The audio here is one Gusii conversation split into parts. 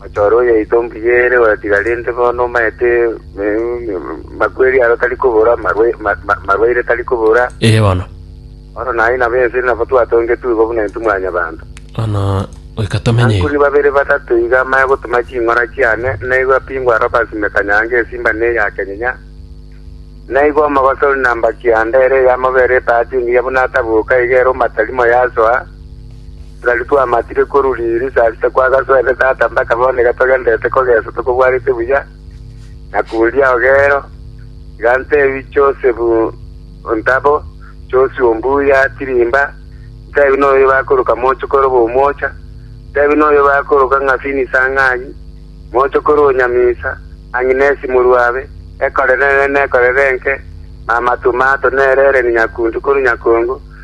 Ochoore oyeito nkiyeere oratiga rende bono omaete makweri aro tari kobora, marwaire tari kobora. Ee bono. Bono naye nabo ense ere nabo twatongetwe igo buna intwe mwanyabanto. Bono goika tomenye igo. Ankuri babere batato iga amaya gotuma ching'ora chiane, naigo apingwa aro basimeka nyanga esimba na eyakenyinya. Naigo omogosori na mbaki yanda ere eyamobera epaati engiya buna atabuka iga ere omatarimo yasoa. Nari twamatire korwa riiri saa sita twagasoete tata mpaka bono iga togenderete kogeso tokobwarete buya, na koria ogeero. Iga ntebi Joseph ontabo, Josi ombuya tirimba, ntebi noyo bakoroka mochokoro b'omwocha, ntebi noyo bakoroka ng'a Finisa ng'anyi, mochokoro o Nyamisa, Agnesi morwabe, ekore nene nekorere enke, mama Tomato nere ere nyakuntu korwa nyakongo,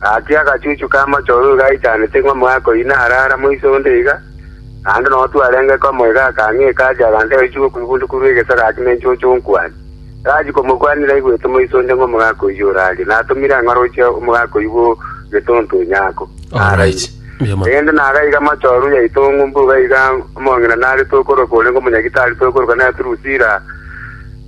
Gaki agachuchu k'amochorori gaichanete ng'a omoika oyio narare amo iso onde iga, naende nonya twarenge komo iga akang'ika ache abanto abayichi bokw'igunda korwa egeso gaki ne enchocho onkwania. Tarachi komokwania naigwete omoisa onde ng'a omoika oyio orarie, natomire ang'e oroche omoika oyio bwo getonto onyako, naraire. Erinde nagaiga mochorori yaito ng'umbu iga omong'ina narete okorokwa orenge omonyagitari toikoroka naye Turusila.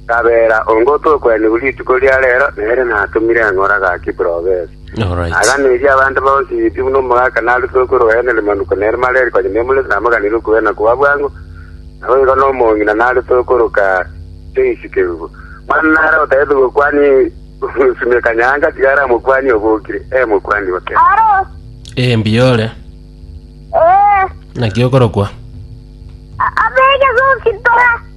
Tabera, onga otokwenerwa rituko ria reero, nere natomire eng'ora gaki buna obese, Alright. na aganeria abanto bonsi pi buna omogaka narutire okw'orobaene rimanuko nere mareri konya nemureti namoganire okwegena koba bwango, naboigo nomong'ina narete okoroka Joyce Kerubo. Manu nare otagete gokwania Simiyu Kanyanga, tiga are omokwania obokire, ee mokwani ote. Aro. Eh, mbuya ore. Eh. Naki okorokwa. Abege sonsi tora.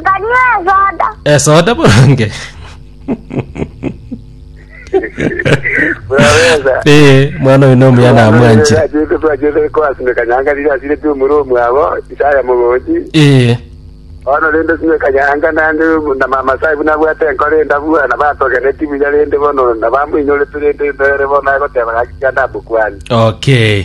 Nkanywa esoda. esoda boronge Burabeza. Eh, mwana oyo nomuya namwanchire Twachete twachete kwasindeka nyanga riri asire tumure omwabo isaya mogochi. Eh, Ono rende sindeka nyanga nande na mama sai buna bwate enkore ndabua na batogene timu ya rende bono na bamuinyore turende mbere bono agoteba gaki ya ndamukwani. okay